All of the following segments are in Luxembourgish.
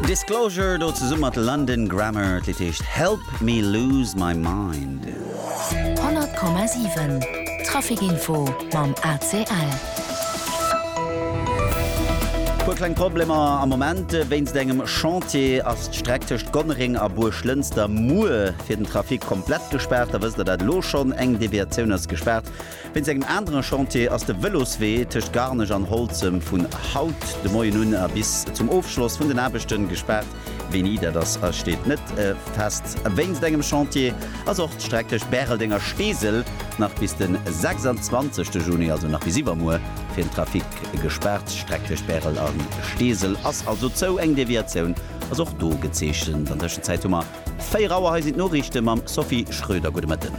Disclosure do zesumme mat London Grammar, d'Lidd heescht Help Me Lose My Mind. 100,7 Traficinfo mam ACL. Puer kleng Problemer am Moment. Wéinst engem Chantier ass d'Streck tëscht Gonnereng a Buerglënster muer fir den Trafic komplett gespaart. Da wësst der dat elo schonn. Eng Deviatioun ass gespaart Wéinst engem anere Chantier ass de Vëloswee tëscht Garnech an Holzem vun haut de Moien un a bis zum Ofschloss vun den Aarbechte gespaart. Wéini dat ass, steet net fest. Wéinst engem Chantier ass och d'Streck tëscht Bäreldeng a Steesel nach bis de 26 Juni, also nach bis iwwermuer, fir den Trafic gespaart. D'Streck tëscht Bärel a Steesel ass also zou. Eng Deviatioun ass och do gezeechent. An Tëschenzäit hu mer. 4 Auer, hei sinn d'Noriichte mam Sophie Schröder. Gudde Mëtten.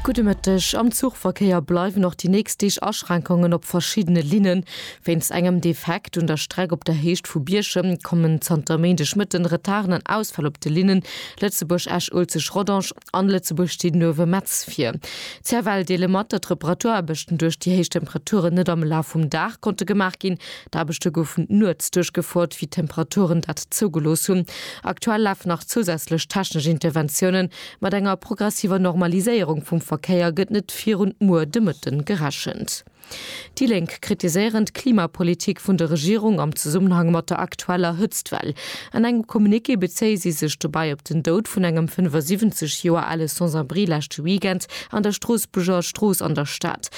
Gudde Mëtteg. Am Zuchverkéier bleiwen och déi nächst Deeg Aschränkongen op verschiddene Linnen. Wéinst engem Defekt un der Streck op der Héicht vu Bierchem kommen zanter Méindegmëtten Retarden an Ausfäll op de Linnen Lëtzebuerg-Esch-Uelzecht-Rodange, An Lëtzebuerg steet en uewe Metz vir. D'CFL deele mat, datt Reparatuaraarbechten duerch déi héich Temperaturen net am Laf vum Dag konnte gemaach ginn. D'Aarbechte goufen nuets duerchgefouert, wéi d'Temperaturen dat zougelooss hunn. Aktuell lafen nach zousätzlech technesch Interventiounen. Mat enger progressiver Normaliséierung vum Verkéier gëtt net virun muer de Mëtten gerechent. Déi Lénk kritiséieren d'Klimapolitik vun der Regierung am Zesummenhang mat der aktueller Hëtztwell. An engem Communiqué bezéie si sech dobäi op den Doud vun engem 75 Joer ale Sans-abri leschte Weekend an der Stroossbuerger Strooss an der Stad.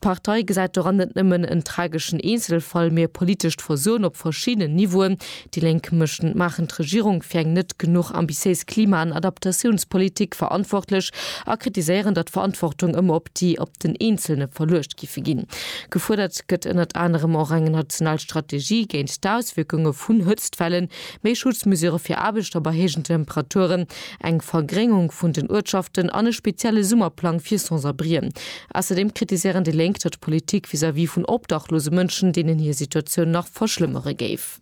D'Partei gesäit doran net nëmmen en trageschen Eenzelfall, mee e politescht Versoen op verschiddenen Niveauen, Déi Lénk méchten d'Maachen d'Regierung fir eng net genuch ambitiéis Klima an Adaptatiounspolitik verantwortlech a kritiséieren, datt Verantwortung ëmmer op déi op den Eenzelne verluecht giffe ginn. Gefuerdert gëtt ënnert anerem och eng national Strategie géint d'Auswierkunge vun Hëtztwellen, méi Schutzmesure fir Aarbechter bei héijen Temperaturen, eng Vergréngung vun den Uertschaften an e spezielle Summerplang fir Sans-abrien. Ausserdeem kritiséieren déi Lénk, datt d'Politik vis-à-vis vun obdachlose Mënschen, deenen hir Situatioun nach verschlëmmere géif. Kaf.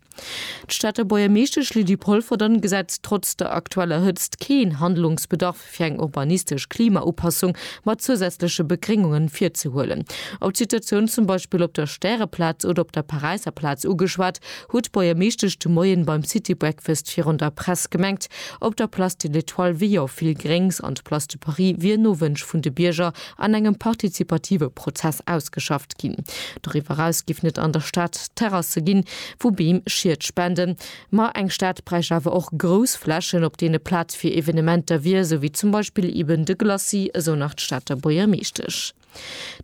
D'Stater Buergermeeschtesch Lydie Polferdon gesäit trotz der aktueller Hëtzt keen Handlungsbedarf fir eng urbanistesch Klimaupassung mat zousätzleche Begréngungen virzehuelen. Op d'Situatioun zum Beispill op der Stäreplaz oder op der Paräisser Plaz ugeschwat, huet d'Buergermeeschtesch de Moien beim City Breakfast virun der Press gemengt, op der Place de l'Etoile wier jo vill Gréngs an d'Place de Paris wier no Wënsch vun de Bierger an engem partizipative Prozess ausgeschafft ginn. Doriwwer eraus giff net an der Stad Terrasse ginn, wou Beem Schied spenden, ma eng Stad bräicht awer och grouss Flächen, op deene Plaz fir Evenementer wier, sou wéi zum Beispill eben de Glacis, esou nach d'Stater Buergermeeschtesch.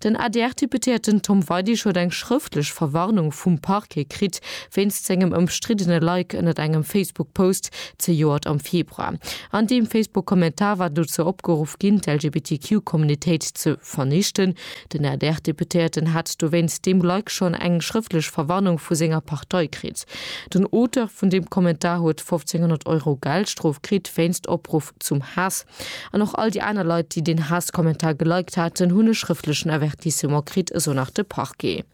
Den ADR-Deputéierten Tom Weidig huet eng schrëftlech Verwarnung vum Parquet kritt, wéinst sengem ëmstriddene Like ënnert engem Facebook-Post, Zejoert am Februar. An deem Facebook-Kommentar war dozou opgeruff ginn, d'LGBTQ-Communitéit ze vernichten. Den ADR-Deputéierten hat dowéinst deem Like schonn eng schrëftlech Verwarnung vu senger Partei kritt. Den Auteur vun deem Kommentar huet 1500 Euro Geldstrof kritt wéinst Opruff zum Haass. An och all déi aner Leit, déi deen Haass-Kommentar geliked haten, hunn e schrëftlechen Avertissement kritt, esou nach de Parquet.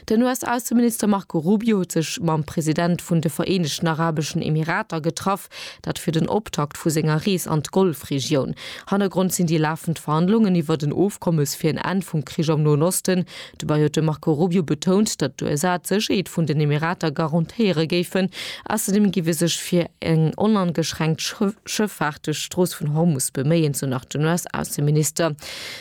Den US-Ausseminister Marco Rubio huet sech mam President vun de Vereenegten Arabeschen Emirater getraff, dat fir den Optakt vu senger Rees an d'Golfregioun. Hannergrond sinn déi lafend Verhandlungen iwwert en Ofkommes fir en Enn vum Krich am Noen Osten. Dobäi huet de Marco Rubio betount, datt d'USA d'Sécherheet vun den Emirater garantéiere géifen. Ausserdeem géif ee sech fir eng onangeschränkt Schëffaart duerch d'Strooss vun Hormus beméien, sou nach den US-Ausseminister.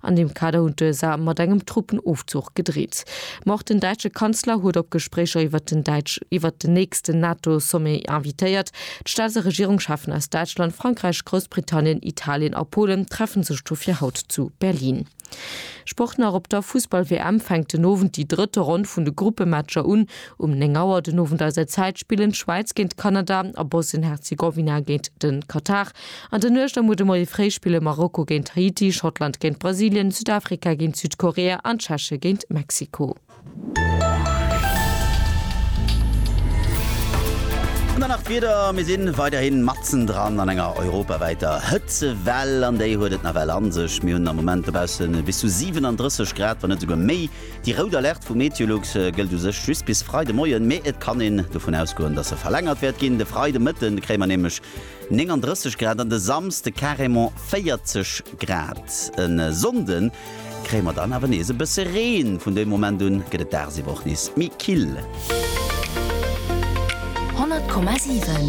An deem Kader hunn d'USA mat engem Truppenofzuch gedreet. Ma och den däitsche Kanzler huet op Gespréicher iwwert den däitsch iwwert den nächsten NATO-Sommet invitéiert. D'Staats a Regierungscheffen aus Däitschland, Frankräich, Groussbritannien, Italien a Polen treffe sech dofir haut zu Berlin. Sport nach, Op der Fussball-WM fänkt den Owend déi drëtte Ronn vun de Gruppematcher un. Um 9 Auer den Owend eiser Zäit spillen d'Schwäiz géint Kanada a Bosnien-Herzegowina géint de Katar. An der Nuecht am Ude Moie fréi spille Marokko géint Haiti, Schottland géint Brasilien, Südafrika géint Südkorea an d'Tscheche géint Mexiko. An dann nach d'Wieder, Mir si weiderhi matzendran an enger europawäiter Hëtzewell an déi huet et nawell a sech. Mir hunn am Moment dobausse bis zu 37 Grad, wann net esouguer méi. Déi rout Alerte vu Meteolux gëllt u sech just bis Freidemoien, mee et kann een dovun ausgoen, dass se verlängert wäert ginn. De Freidemëtten kréie mer nämlech 39 Grad an de Samsde carrément 40 Grad. E Sonnde kréie mer dann awer nees e bësse Reen. Vun dem Moment un gëtt et dagsiwwer och nees méi kill. 100,7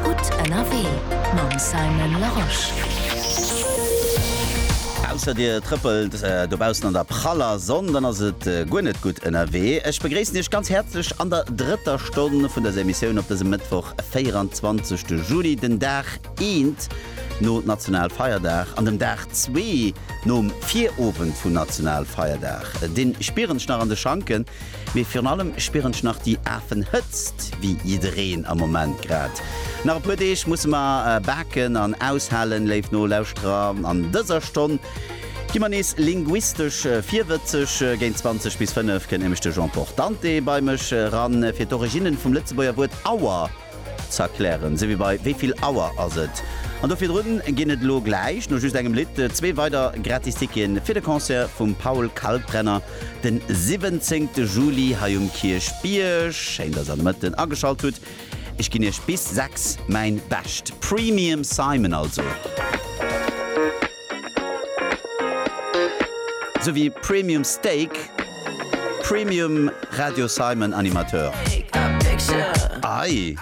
Gutt ënnerwee mam Simon Larosche. Ausser dir trëppelt dobaussen an der praller Sonn, dann ass et guer net gutt ënnerwee. Ech begréissen iech ganz häerzlech an der drëtter. Stonn vun dëser Emissioun op dësem Mëttwoch, 24 de Juli, den Dag eent no Nationalfeierdag an dem Dag zwee nom Virowend vun Nationalfeierdag. Dee spieren ech nach an de Schanken, mee virun allem spieren ech nach déi Afenhëtzt, wéi jiddereen am Moment grad. Nach e puer Deeg musse mer baken an aushalen, léif Nolauschterer. An dëser Stonn. Gi mer nees linguistesch virwëtzeg, Géint 20 bis 5 kënnt nämlech de Jean Portante bei mech eran, fir d'Originnen vum Lëtzebuerger Wuert Auer z'erklären, esou wéi bei Wéi vill Auer ass et? An do virdrun ginn et elo gläich, no just engem Lidd, zwee weider Gratisticke fir de Concert vum Paul Kalkbrenner den 17 Juli hei um Kierchbierg. Schéin, dass der de Mëtten ageschalt hutt. Ech ginn iech bis 6 mäin Bescht. Premium Simon also. Sou wéi Premium Steak, Premium Radio Simon Animateur. Ei!